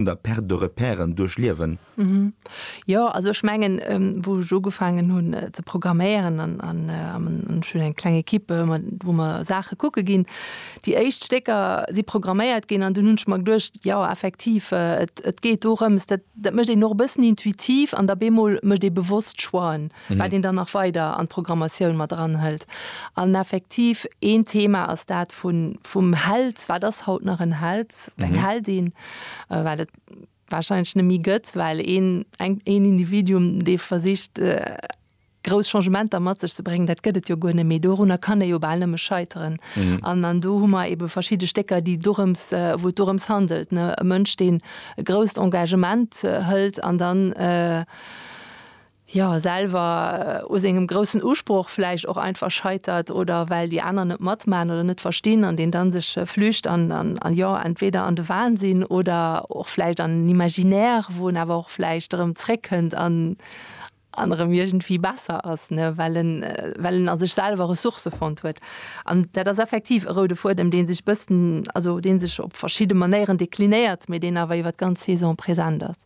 un der Perte de repèren duerchliewen. Jo, also ech mengen, wou ech ugefaangen hunn ze programméieren an an ech hunn eng kleng Ekipp, wou mer Saache kucke ginn, déi éischt Stécker si programméiert ginn an dunn hunn ech mer geduecht, jo effektiv, et geet dorëms, dat mécht een och e bëssen intuitiv an da bemol mécht ee bewosst Choixen. wat een dann nach weider an d'Programmatioun mat eranhëlt. An effektiv een Thema ass dat vun, vum Held, wat ass haut nach en Held, eng Heldin, wat et warscheinlech net méi gëtt, well een, eng, een Individuum, dee versicht grouss Changementer mat sech ze bréngen, dat gëtt et jo guer net méi. Dorunner kann ee jo bal nëmme scheiteren. An, an do hu mer ebe verschidde Stécker, déi dorëms, wou et dorëms handelt, ne, e Mënsch, deen e grousst Engagement hëlt an dann, jo selwer u sengem groussen Usproch vläicht och einfach scheitert oder well déi aner net matmachen oder net verstinn an deen dann sech flücht an an jo entweder an de Wahnsinn oder och vläicht an en Imaginaire wou en awer och vläicht erëm zréckkënnt an an erëm iergendwéi besser ass ne well en well en a sech selwer Ressourcë fonnt huet an dat ass effektiv e roude Fuedem dee sech bëssen also dee sech op verschidde Manéieren deklinéiert mee deen awer iwwert d'ganz Saison present ass.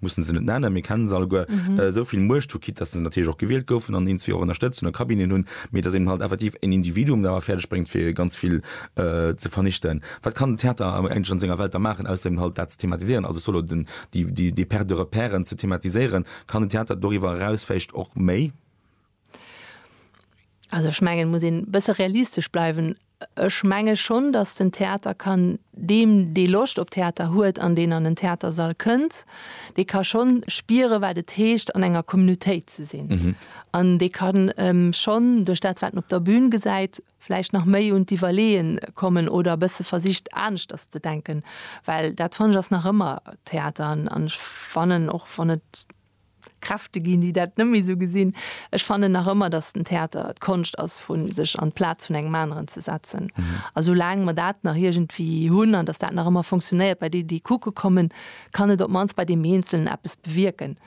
mussen se net nennen, mir kennen se alleguer, esou vill Muecht hu, quitt dass se natierlech och gewielt goufen an eenz wie och ënnerstëtzt hunn a Cabineten hunn, mee dass eben halt effektiv en Individuum et awer fäerdeg bréngt, fir ganz vill ze vernichten. Wat kann den Theater awer eigentlech an senger Welt da maachen, ausser eben halt dat ze thematiséieren, also solo den, déi, déi, déi Perte de repèren ze thematiséieren? Kann den Theater doriwwer eraus vläicht och méi? Also ech mengen muss een bësse realistesch bleiwen. Ech menge schonn, datt den Theater kann deem, dee Loscht op Theater huet an deen an en Theatersall kënnt, dee ka schonn spiere wat et heescht an enger Communautéit ze sinn. An dee kann schonn duerch dat wat en op der Bün gesäit vläicht nach méi un d'Iwwerleeë kommen oder bësse versicht aneschters ze denken, well dat fannen ech ass nach ëmmer Theater an ech fannen och wann et, Kräfte ginn, déi dat net méi esou gesinn. Ech fannen nach ëmmer, datt den Theater d'Konscht ass vu sech an d'Plaz vun engem aneren ze setzen. A soulaang mer dat nach iergendwéi hunn an datt dat nach ëmmer fonctionnéiert bei deenen, déi kucke kommen, kann et op d'mannst bei deem Eenzelen eppes bewierken.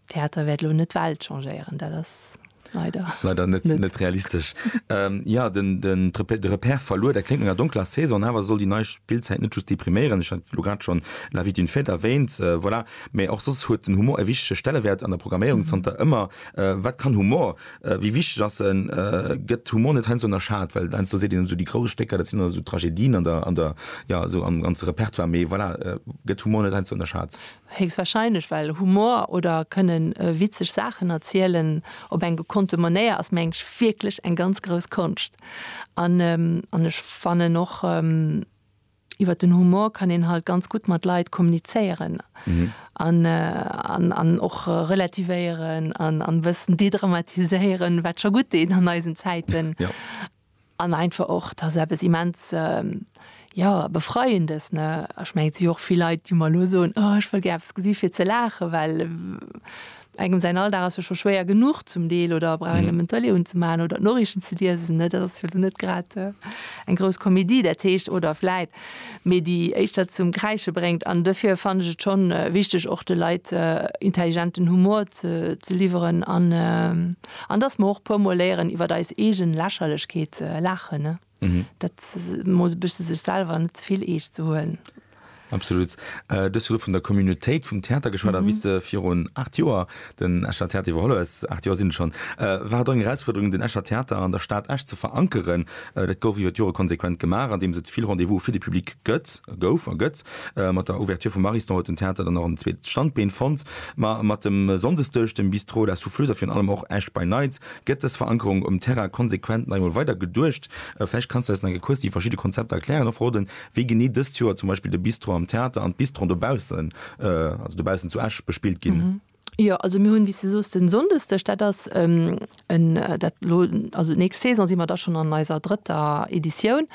Theater wäert elo net d'Welt changéieren, dat ass. Leider. Leider net, net. net realistesch. ähm, ja, den, den Trepe- de Repère verluer, der klingt enger donkler Saison, awer soll déi nei Spillzäit net just depriméieren. Ech hat lo grad schon La vie d'une fête erwähnt, äh, voilà. Mee och soss huet den Humor e wichtege Stellewäert an der Programméierung zanter ëmmer. Äh, wat kann Humor? Äh, wéi wichteg ass en? Äh, gëtt Humor net heiansdo ënnerschat? Well heiansdo seet een esou, déi grouss Stécker, dat sinn ëmmer esou Tragedien an der, an der, ja, esou am ganze Repertoire. Mee voilà, äh, gëtt Humor net heiansdo ënnerschat? Héchstwahrscheinlech, well Humor oder kënne witzeg Saachen erzielen op eng gekonnte Manéier ass mengen ech wierklech eng ganz grouss Konscht. An an ech fannen och iwwer den Humor kann een halt ganz gutt mat Leit kommunizéieren an an an och relativéieren an an e bëssen dédramatiséieren, wat scho gutt deet an eisen Zäiten. An einfach och, dat ass eppes immens, jo, Befreiendes, ne? Ech mengen, et si jo och vill Leit, déi mer elo soen, Oh, ech wëll gär eppes gesi fir ze laachen, well engem säin Alldag ass jo scho schwéier genuch zum Deel oder brauch een nëmmen d'Tëlee unzemaachen oder d'Noriichten ze liesen, ne? Dat ass jo elo net grad eng grouss Komedie. Dat heescht, oder vläit méi, déi éischter zum Kräische bréngt. An dofir fannen ech et schonn wichteg, och de Leit intelligenten Humor ze liwweren an, An dass mer och puer mol léieren iwwert eis eegen Lächerlechkeet ze laachen, dat mol e bëssche sech selwer net ze vill eescht ze huelen. Absolut. Du hues virdru vun der Communautéit vum Theater geschwat, a wéi s de virun 8 Joer den Escher Theater iwwerholl hues, 8 Joer sinn et schonn, war et och eng Erausfuerderung den Escher Theater an der Stad Esch ze verankeren. Dat gouf iwwer d'Jore konsequent gemaach, andeems et vill Rendez-vous fir de Public gëtt, gouf a gëtt. Mat der Ouverture vum Ariston huet den Theater dann och en zweet Standbeen fonnt. Ma mat dem Sonndesdësch, dem Bistrot La Souffleuse a virun allem och Esch by Night gëtt dës Verankerung um Terrain konsequent nach eemol weider geduecht. Vläicht kanns de eis nach eng Kéier kuerz déi verschidde Konzepter erklären a verroden, wéi genee dëst Joer zum Beispill de Bistro am Theater an d'Bistron dobaussen, also dobaussen zu Esch, bespillt ginn. Jo, also mir hunn, wéi s de soos, den Sonndesdeg, dat ass en, dat elo, also d'nächst Saison si mer da schonn an eiser drëtter Editioun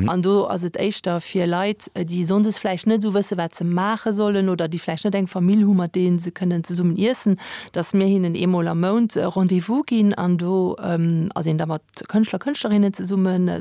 an do ass et éischter fir Leit, déi Sonndes vläicht net esou wësse wat se maache sollen oder déi vläicht net eng Famill hu mat deenen se kënnen zesummen iessen, datt mir hinnen eemol am Mount Rendez-vous ginn an do ass een da mat Kënschtler, Kënschtlerinnen zesummen.